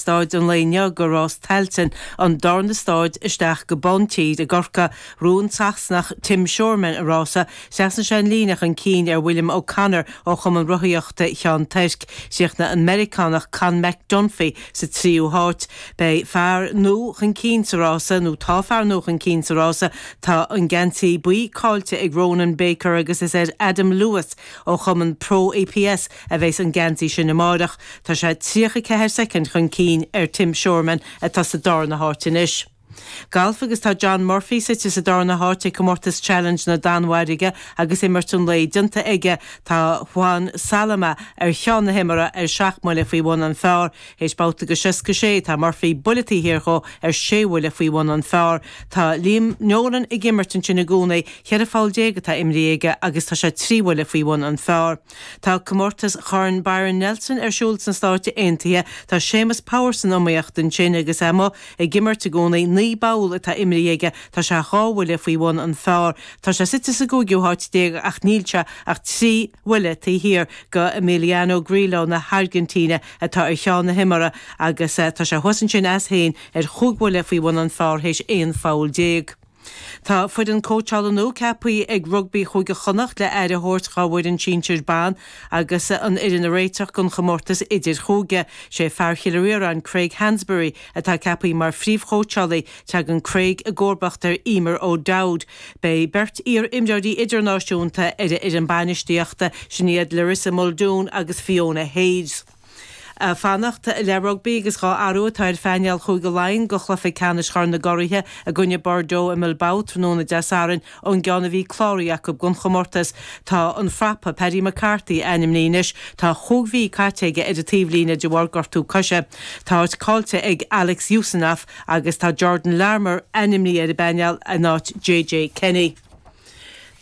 Stáid an lae inniu go Rás Tailteann an darna stáid isteach go Bántír i gCorcaigh ghnóthaigh an Sasanach Tim Shoreman an rása thrasnaigh sé an líne chun cinn ar William O'Connor ó chumann rothaíochta Cheann Toirc chríochnaigh an Meiriceánach Conn McDunphy sa tríú háit beidh fear nua chun cinn sa rása nó tá fear nua chun cinn sa rása tá an geansaí buí cáillte ag Ronan Baker agus is ar Adam Lewis ó chumann Pro APS a bheas an geansaí sin amáireach. Tá sé 34 soicind chun cinn ar Tim Shoreman atá sa darna háit anois. Galf agus tá John Murphy suite sa darna háit ag comórtas Challenge na Danmhairge agus imirt an lae déanta aige. Tá Juan Salama ar cheann na himeartha ar seacht mbuille faoi bhun an phár. Théis babhta go seasca sé tá Murphy buille taobh thiar dhó ar sé bhuille faoi bhun an phár. Tá Liam Nolan ag imirt ansin i gcónaí. Cheithre pholl déag atá imrithe aige agus tá sé trí bhuille faoi bhun an phár. Tá comórtas Chorn Byron Nelson ar siúl sna Stáit Aontaithe. Tá Séamus Power san iomaíocht ansin agus é amuigh ag imirt i gcónaí. Naoi bpoll atá imrithe aige. Tá sé dhá bhuille faoi bhun an phár. Tá sé suite sa gcúigiú háit déag ach níl sé ach trí bhuille taobh thiar go Emiliano Grillo na hAirgintíne atá ar cheann na himeartha agus tá sé thuas ansin as féin ar chúig bhuille faoi bhun an phár théis aon pholl déag. Tá foireann cóitseála nua ceapaí ag Rugbaí Chúige Chonnacht le aire a thabhairt dhá bhfoireann sinsir ban agus an fhoireann a réiteach don chomórtas idirchúige. Sé fear Chill Riaráin Craig Hansberry atá ceapaí mar phríomhchóitseálaí. Teagann Craig i gcomharbacht ar Emer O'Dowd. Beidh beirt iar-imreoirí idirnáisiúnta ar a fhoireann bainistíochta, sin iad Larissa Muldoon agus Fiona Hayes. Ag fanacht le rugbaí agus dhá athrú atá ar phainéal Chúige Laighean do chluiche ceannais Chorn na gCuraithe i gcoinne Bordeaux i mBilbao tráthnóna Dé Sathairn. Ón gceann a bhí cláraithe acu don chomórtas, tá an frapa, Paddy McCarthy, ainmnithe anois. Tá chúig mhí caite aige ar an taobhlíne de bharr gortú coise. Tá áit caillte ag Alex Usanov agus tá Jordan Larmour ainmnithe ar an bpainéal in áit JJ Kenny.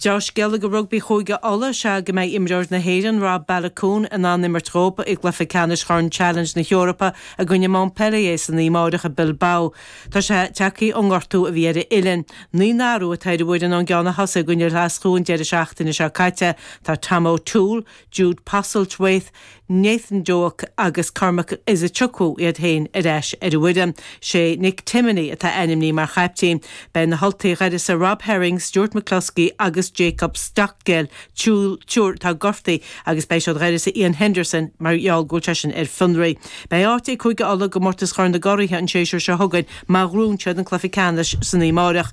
Deá-scéala go rugbaí Chúige Uladh is ea go mbeidh imreoir na hÉireann, Rob Baloucoune, in ann imirt dhób i gcluiche ceannais Chorn Challenge na hEorpa i gcoinne Montpellier san oíche amáireach i Bilbao. Tá sé tagtha ón ngortú a bhí ar a uillinn. Naoi n-athrú atá ar an bhfoireann ón gceann a thosaigh i gcoinne Ghlaschú an deireadh seachtaine seo caite. Tá Tom O'Toole, Jude Postlethwaite, Nathan Doak agus Cormac Izuchukwu iad féin ar ais ar an bhfoireann. Sé Nick Timoney atá ainmní mar chaiptín. Beidh na hUltaigh dh'uireasa Rob Herring, Stuart McCloskey agus Jacob Stockdale, triúr atá gortaithe agus beidh siad dh'uireasa Iain Henderson mar gheall go bhfuil seisean ar fionraí. Beidh áit ag Cúige Uladh i gComórtas Chorn na gCuraithe an séasúr seo chugainn má ghrúnn siad an cluiche ceannais san oíche amáireach.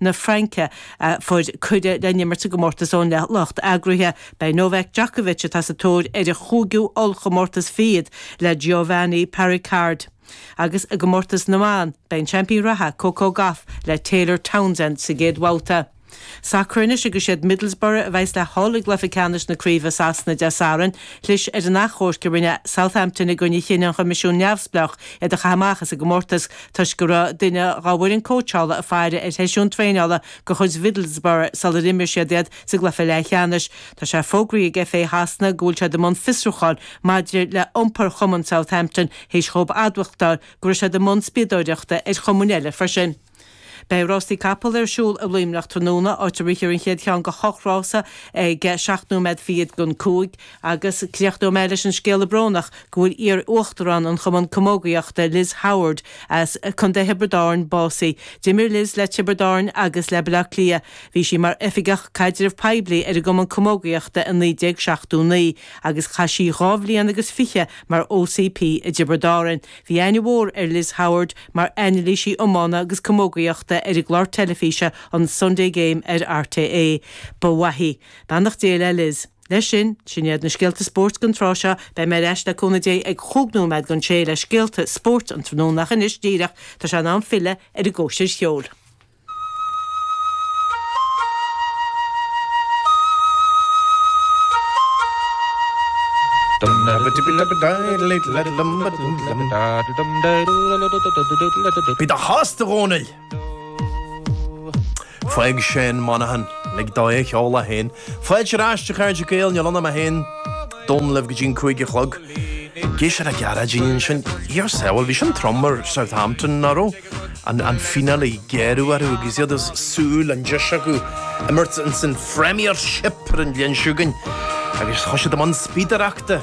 na Fraince, a fuair cuireadh le n-imirt i gcomórtas ón lucht eagraithe. Beidh Novak Djokovic, atá sa tóir ar a chúigiú ollchomórtas fichead le Giovanni Perricard, agus i gcomórtas na mban, beidh an seaimpín reatha Coco Gauff le Taylor Townsend sa gcéad bhabhta. Sacar anois agus siad Middlesbrough a bheas le Hull i gcluiche ceannais na craoibhe i Sasana Dé Sathairn, chlis ar an achomharc a rinne Southampton i gcoinne chinneadh an Choimisiúin neamhspleách iad a chaith amach as an gcomórtas toisc go raibh duine dá bhfoireann cóitseála ag faire ar sheisiún traenála de chuid Middlesbrough sular imir siad iad sa gcluiche leathcheannais. Tá sé fógraithe ag FA Shasana go bhfuil siad i mbun fiosrúcháin maidir le iompar chumann Southampton théis dhóibh admhachtáil go raibh siad i mbun spiadóireachta ar chumainn eile freisin. Beidh rástaí capall ar siúl i Luimneach tráthnóna, áit a rithfear an chéad cheann de hocht rása ag seacht nóiméad fichead don cúig. Agus críochnóidh mé leis an scéala brónach go bhfuil iar-uachtarán an Chumann Camógaíochta, Liz Howard, as Contae Thiobraid Árann básaithe. D'imir Liz le Tiobraid Árann agus le Baile Átha Cliath. Bhí sí mar Oifigeach Caidreamh Poiblí ar an gCumann Camógaíochta i 1979 agus chaith sí dhá bhliain agus fiche mar OCP i dTiobraid Árann. Bhí aithne mhór ar Liz Howard mar anailísí iomána agus camógaíochta ar an gclár teilifíse an Sunday Game ar RTÉ. Ba mhaith í. Beannacht Dé le Liz. Leis sin, sin iad na scéalta spóirt don tráth seo. Beidh mé ar ais, le cúnamh Dé, ag chúig nóiméad don sé le scéalta spóirt an tráthnóna, ach anois díreach, tá sé in am filleadh ar an gcóisir cheoil. Bí do shásta, a Dhónaill! Fág Seán Monaghan, lig dó é a sheoladh féin. Fáilte ar ais a chairde Gael, níl ann ach mé féin. Dónall, Libh go dtí an cúig a chlog. Ag éisteacht le Gearóidín ansin. Dia ár sábháil, bhí sin trom ar Southampton, nach raibh? An fíneáil a gearradh orthu agus iad ag súil an deis acu imirt ins an Phremiership ar an bhliain seo chugainn agus chuaigh siad i mbun spiadaireachta.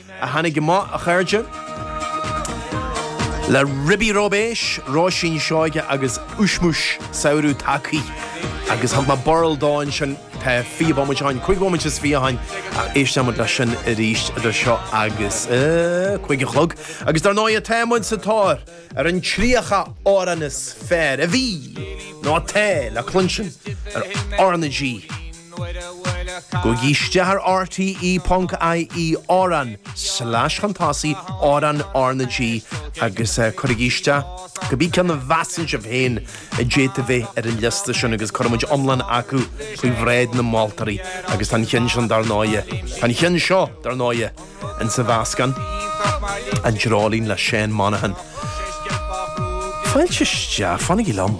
a tháinig amach, a chairde, le ribí róibéis, róisín Seoighe agus uismiús samhraidh tacaí. Agus thug mé burl dó ansin, tá fiche bomaite ann, cúig bhomaite is fiche ann, ach éistfidh muid leis sin arís idir seo agus cúig a chlog. Agus dar ndóigh, tá muid sa tóir ar an tríocha amhrán is fearr a bhí, nó atá, le cluinstin ar RnaG. Gabhaigí isteach ar rte.ie amhrán slash chun tosaigh, amhrán R na G, agus cuirigí isteach cibé ceann a mheasann sibh féin a d'fhéadfadh a bheith ar an liosta sin agus cuirfidh muid iomlán acu faoi bhráid na moltóirí agus tá an cheann sin dar ndóigh, tá an cheann seo dar ndóigh, insa mheascán, An Dreoilín le Seán Monaghan. Fáilte isteach, fanaigí liom.